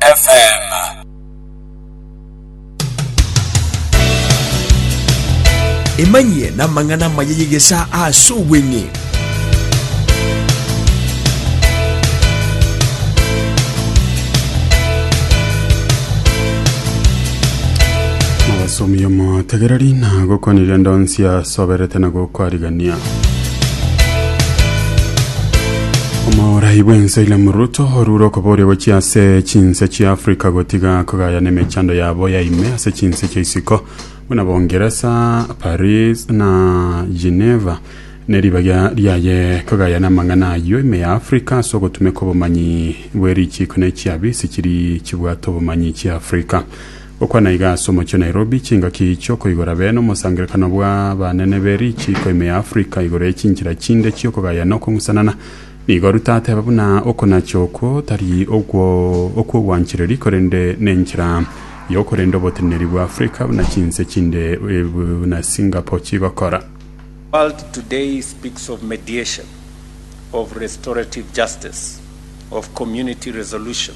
FM. Emanyie n'amang'ana amaya y'egesaa ase obweng'e. Abasomi omotegereri na gokonirie ndonsi asoberete na gokwarigania. omorai bw'ense William Ruto orure okoboria gochia ase chinse chia Africa gotiga kogaya nemechando yabo ya ime ase chinse chia isiko buna Bongeresa, Paris na Geneva neribagia riaye kogaya namang'ana ayio ime ya Africa ase ogotumeka obomanyi bwe richiko ne chiabisi chiri chibwate obomanyi chia Africa. Gokwana aiga ase omochie Nairobi, chingaki chiokoigora bene omosangererekano bw'abanene be richiiko ime ya Africa igoro ye chinchera chinde chi'okogaya na okong'usanana, nigo Ruto ateba buna okonacha okwo tari okw'obwanchereri korende nenchera y'okorenda oboteneneri bwa Africa buna chinse chinde buna Singapore chigokora. World today speaks of mediation, of restorative justice, of community resolution.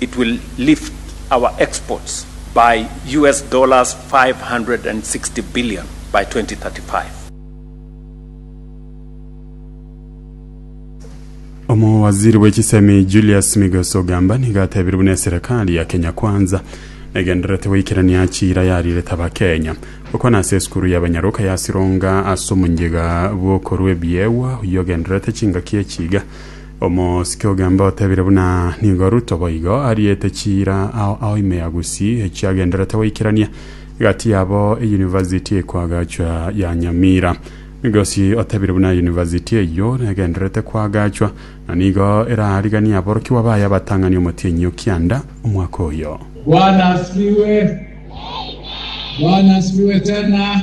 It will lift our exports by US dollars 560 billion by 2035. Omowaziri bwe chisemi Julius Migos Ogamba nigo atebire buna eserekari ya Kenya Kwanza negendererete goikerania chira yarirete abakenya gokwana ase esukuru ya banyaroka ya Sironga ase omonyiga bw'okorwa ebiegwa oyio ogendererete chingaki echiga Omosike ogembe otebire buna nigo Ruto boigo ariete chiira ao ao ime ya Gusii echio agenderete goikerania egati yabo eyunivasiti ekwagachwa ya Nyamira. Migosi otebire buna eyunivasiti eyio negenderete kwagachwa na nigo eraariganie aborokigwa baye abatang'ani omotienyi o Kianda omwaka oyo. Bwana asifiwe. Bwana asifiwe tena.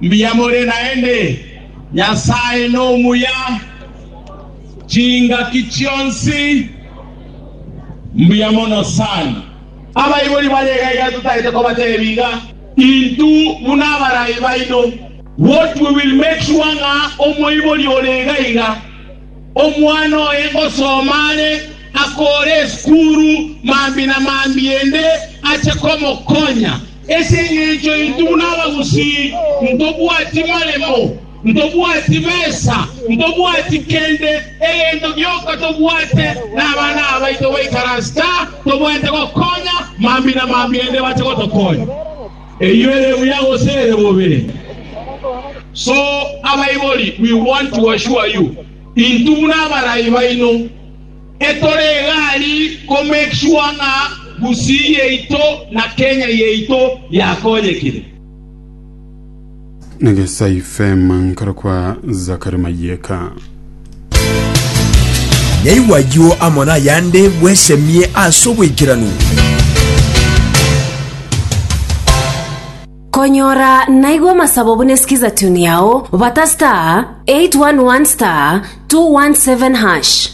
Mbuya more naende, Nyasae nomuya, chingaki chionsi mbuya mono sana. Abaibori bare iga iga totaete kobateebia iga, Intwe buna abarai baino. What we will make sure ng'a omoibori ore iga iga, omwana oye ngosoma are, akoore esukuru mambi na mambi ende ache komokonya. Ase engencho intwe buna abagusii ntobwati maremo, ntobwati besa, ntobwati kende, egento gionka tobwate nabana abaito baikaransete aa, tobwenerete gokonya mambia na mambia ende bache gotokonya. Eyio ere buya gose ere bobe? So abaibori, we want to assure you, intwe buna abarai baino, Etore egari ko make sure ng'a Gusii yaito na Kenya yaito yakonyekire. Negesai Fem nkoro kwa Zakari Mayeka. Yaigwa ayio amo nayande, bwesemie ase oboikeranu. Konyora naigwa amasabo buna esikiza tune yao, bata star 811 star 217 hash.